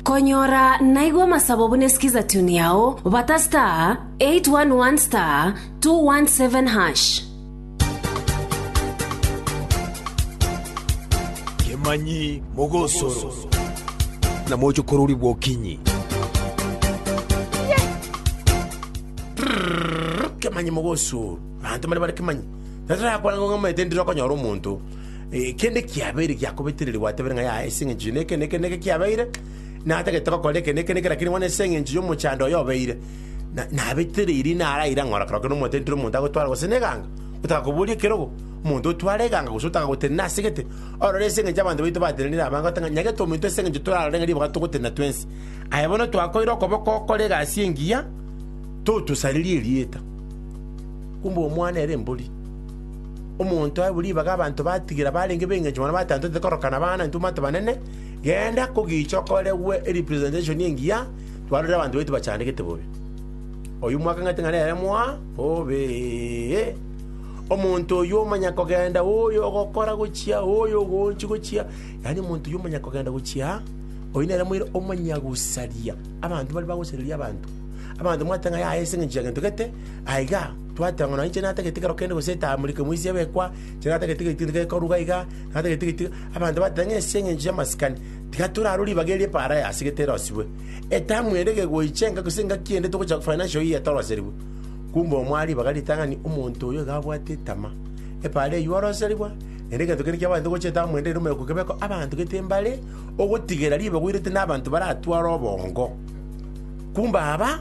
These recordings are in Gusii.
Konyora naigwe amasabo buna skiza tune yao, bata *811*217#. Kemanyi mogosoro, na mochokorori bw'okinyi. Kemanyi mogosoro, banto mbare bare kemanyi. Tatarakwana ng'o ng'amaete ndire okonyora omonto. Kende kiabeire giakobetereria gwatebire ng'a yaya ase engencho y'eke na eke na eke kiabeire, natagete gokora eke na eke na eke, lakini bono ase engencho y'omochando oyo obeire, na- nabetereirie naraire ang'ora kero kende omotenteri omonto agotware gose neganga, otaka koboria ekerogo, omonto otware eganga gose otaka gotenena ase gete, orore ase engencho y'abanto baito batenenire abange gote ng'a nyagete ominto ase engencho torarore ng'a ribaga togotenena twensi. Aye bono twakoire okoboko okore egasi engiya, totosaririe erieta. Kumbe omwana ere embori. Omonto ae bo ribaga abanto batigire abarenge b'engencho mono batantete korokana na abana intwe omwate banene, genda kogicha okoregwe erepresentation engiya twarorire abanto baito bachandegete bobe. Oyio mwakang'ete ng'a nere moa bobe. Omonto oyio omanya kogenda oyo ogokora gochia oyo ogochi gochia yaani omonto oyio omanya kogenda gochia oyio nere moire omanya gosaria abanto baria bagosareria abanto. Abanto mwate ng'a yaya ase eng'encho ya gento gete aiga. Twateba ng'a nonya inche natagete ekero kende gose etaamuri eke mwisi ebekwa, inche natagete egento gento gekoruga iga, natagete egento iga. Abanto bateba ng'a ase eng'encho y'amasikani, tiga torarwe ribaga erio epaara yaye ase gete erosibwe. Etamu ende ekegoicha enga gose engaki ende togocha financial year toroserigwe. Kumbe omoa ribaga ritang'ani omonto oyo iga abwate etama. Epaara eywo oroserigwa, naende egento kende kiabaete gocha etamu ende ere omoyoka okebeko abanto gete mbare, ogotigera ribaga oirete na abanto baratware obongo. Kumbe aba.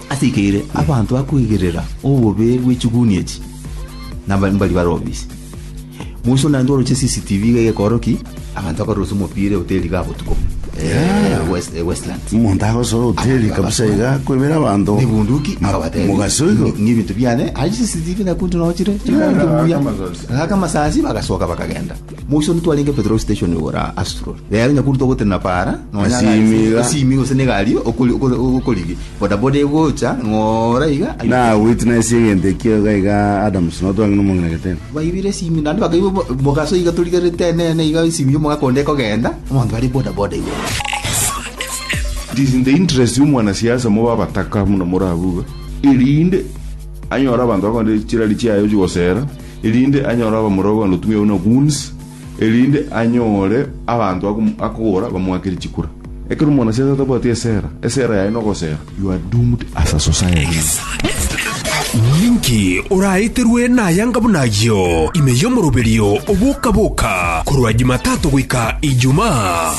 Asekeire abanto bakoigerera obobe bwe chiguni echi, na mbari barobise. Moiso naende oroche CCTV iga egekoroki, abanto bakarosa omopira ehoteri iga botuko buna. Eh, West- eh, Westlands. omonto agosoa hoteli kabisa iga akoibera abanto nebunduki akabatebia mogaso igo "Ngi- ngi ebinto biane aye CCTV nakuntu nochire chingaki buya gaka masasi bagasoka bakagenda Moisori twarenge petrol station igoro Astrol. Rero onye korwa togotenena para, nonya Esimiga. egari- esimiga gose na egari okori- okori- okorigi. Bodaboda egocha, ng'ora iga. Na witness egento ekio iga iga Adams no twang'ina omong'ina getebe. Baibire esimi naende bakaibwa mo- mogaso iga torigerete enene iga esimi y'omoga konde ekogenda, abanto bare bodaboda igoro. It is in the interest ya omwana siasa mobe abataka muna morabuga erinde anyore abanto bakonde chirari chiaye ochigosera erinde anyore abamura bw'ogotumia buna goons, erinde anyore abanto akom- akogora bamoakere chikura. Ekero omwanasiasa atabwati esera, esera yaye nogosera, you are doomed as a society. Ninki oraeterwe nayanga buna ayio ime y'omoroberio oboka-boka korwa Jumatatu goika Ijumaa?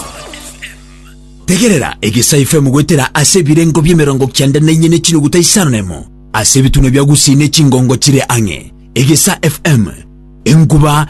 Tegerera, egesaifm goetera ase ebirengo bi'emerongo kianda na inye ne chinuguta isano na emo. Ase ebitunwa bia Gusii ne chingongo chire ang'e, Egesa FM, enkuba